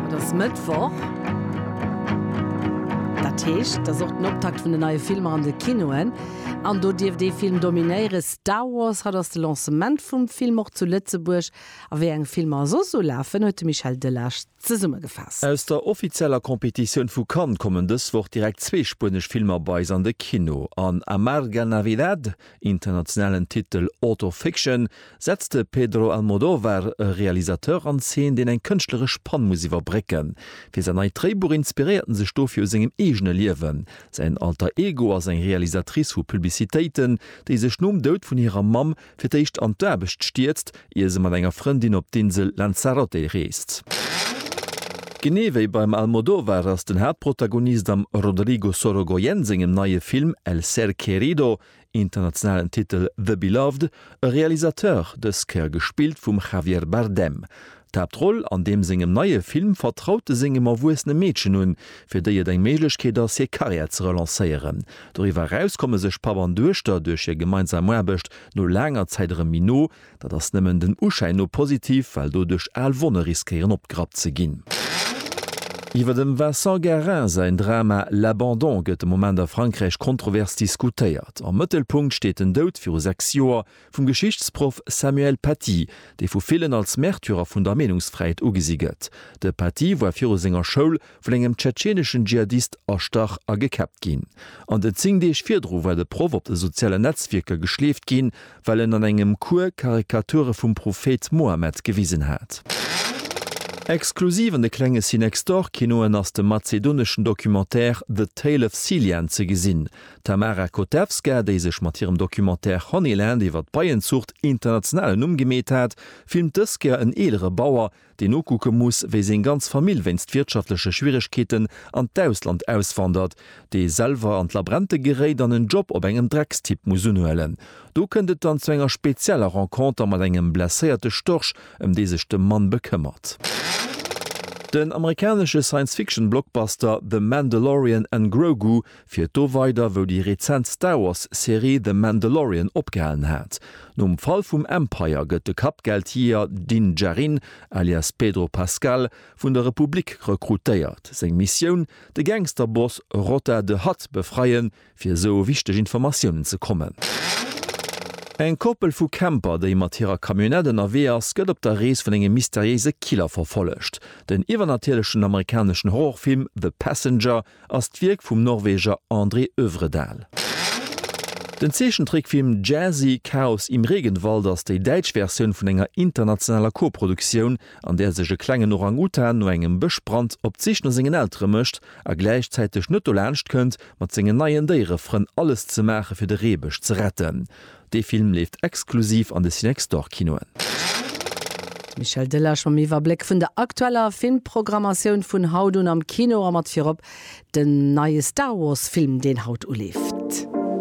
Et ass Mëttwoch. Dat heescht, et ass och den Optakt vun den neie Filmer an de Kinoen. An do dierft ee Film dominéieren, Star Wars. Haut ass de Lancement vum Film och zu Lëtzebuerg. A wéi eng Filmer soss esou lafen, huet de Michel Delage zesummegefaasst. Aus der offizieller Competitioun vu Cannes kommen dës Woch direkt zwee spuenesch Filmer bei eis an de Kino. An Amarga Navidad Internationalen Titel Auto Fiction setzt de Pedro Almodóvar e Realisateur an Zeen, deen eng kënschtleresch Pann muss iwwerbrécken. Fir säin neit Dréibuch inspiréiert en sech dofir u sengem eegene Liewen. Säin Alter Ego ass eng Realisatrice vu Publicitéiten, déi sech nom Doud vun hirer Mamm fir d'éischt an d'Aarbecht stierzt, ier se mat enger Frëndin op d'Insel Lanzarote reest. Genee wéi beim Almodóvar ass den Haaptprotagonist am Rodrigo Sorogoyen sengem neie Film El ser querido, internationalen Titel The Beloved, e Realisateur, dës Kéier gespillt vum Javier Bardem. D'Haaptroll an deem sengem neie Film vertraut e sengem erwuessene Meedchen un, fir déi et eng Méiglechkeet ass, hir Karriär ze relancéieren. Doriwwer eraus komme sech Papp an Duechter duerch hir gemeinsam Aarbecht No laanger Zäit erëm méi no. Dat ass nëmmen den Uschäin no positiv, well doduerch al Wonne riskéieren opgerappt ze ginn. Iwwer dem Vincent Guerin säin Drama L'abandon gëtt de Moment a Frankräich kontrovers diskutéiert. Am Mëttelpunkt steet den Doud, viru sechs Joer, vum Geschichtsproff Samuel Paty, dee vu villen als Märtyrer vun der Meenungsfräiheet ugesi gëtt. De Paty war viru senger Schoul, vun engem tschetscheneschen Dschihadist erstach a gekäppt ginn. An den 10 Deeg virdru war de Proff op de sozialen Netzwierker geschleeft ginn, well en an engem Cours Karikature vum Prophet Mohammed gewisen hat. Exklusiv an de klenge CeNextDoor-Kinoen ass de mazedoneschen Documentaire The Tale of Silian ze gesinn. D'Tamara Kotevska, déi sech mat hirem Documentaire Honeyland iwwer d'Beienzuucht international en Numm gemeet hat, filmt dës Kéier en eelere Bauer, deen nokucke muss, wéi seng ganz Famill wéinst wirtschaftleche Schwieregkeeten an d'Ausland auswandert, dee selwer an d'Labrente geréit an en Job op engem Dreckstipp muss unhuelen. Do kënnt et dann zu enger spezieller Renconter mat engem blesséierte Storch, ëm dee sech de Mann bekëmmert. Den amerikanesche Science-Fiction-Blockbuster The Mandalorian an Grogu Fiert do weider wou déi rezent Star Wars Serie The Mandalorian opgehalen hat. Nom Fall vum Empire gëtt de Kappgeldjeeër Din Djarin, alias Pedro Pascal, vun der Republik rekrutéiert. Seng Missioun, de Gangsterboss Rotta the Hutt befreien, fir esou u wichteg Informatiounen ze kommen. Eng Koppel vu Camper, déi mat hirer Camionnette ënnerwee ass, gëtt op der Rees vun engem mysteriéise Killer verfollegt. Den iwwernatierlechen amerikaneschen Horrorfilm The Passenger ass d'Wierk vum Norweger André Övredal. Den Zeechentrickfilm Jazzy, Chaos im Regenwald ass déi däitsch Versioun vun enger internationaler Koproduktioun, an där sech e klengen Orang-Utan no engem Bëschbrand op d'Sich no sengen Eltere mécht a gläichzäiteg net dolaanscht kënnt, mat sengen neien Déierefrënn alles ze maache fir de Reebësch ze retten. Dee Film leeft exklusiv an de Cinexdor-Kinoen. D'Michèle Delage mam Iwwerbléck vun der aktueller Filmprogrammatioun vun haut un am Kino a mat virop den neie Star Wars Film, deen haut uleeft.